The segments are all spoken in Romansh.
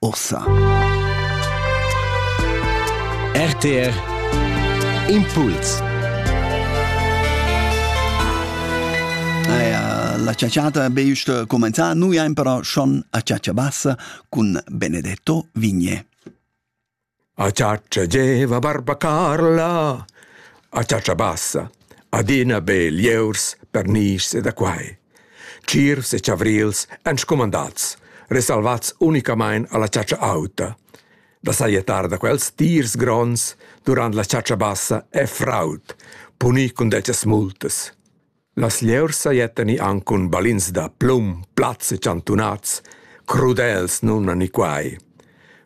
Ursa. RTR Impuls. La ciaciata be just comenza, noi am però schon a ciacia bassa cun Benedetto Vigne. A chatscha gieva barba Carla, a chatscha bassa, adina be lieurs, pernischs e da quai. Tschiervs e chavrils èn scumandats, resalvats unicamain a la chatscha auta. Da sajettar da quels tiers gronds durant la chatscha bassa è fraud, punì cun dettas multas. Las lieurs sajettan i anc cun balins da plum, plats e chantunats, crudels nun a ni quai.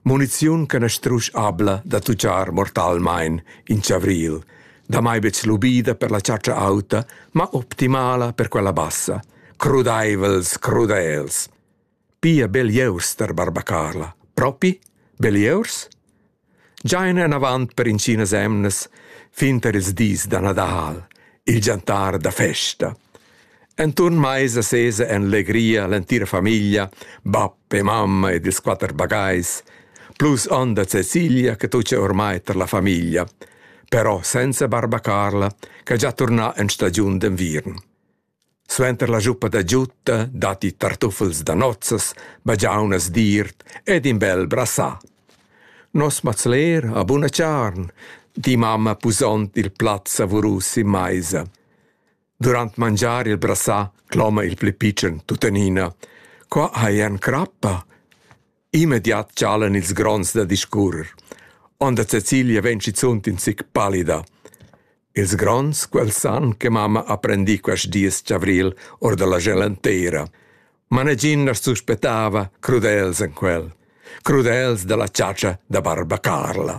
Muniziun che na strusch abla da tucciar mortalmain in chavril, damai betg lubida per la chatscha auta, ma optimala per quella bassa. Crudaivels, crudels. Pia belieus per barbacarla. Propi? Belieus? Già enavant per intginas emnas, fin tar ils dis da Nadal, il gentar da festa. Enturn maisa sesa en legria l'entira famiglia, bab e mamma ed ils quatter bagais, plus onda Cecilia che tuccia ormai tar la famiglia, però senza barbacarla che già torna en stagiun d'enviern. Suenter la schuppa da giutta datti tartuffels da nozzas, bagiaunas d'iert ed in bel brassà. Nos mazler ha buna charn, di mamma pusond il plat savurus sin maisa. Durant mangiar il brassà cloma il pli pitschen tuttenina: «Qua hai en crappa!» Immediat chalan ils gronds da discurrer. Onda Cecilia vegn schizunt in zic pallida. Ils gronds quels san che mamma ha prendì quest dis chavril or da la gelantera, ma negin as suspettava crudels en quel, crudels da la chatscha da barba Carla.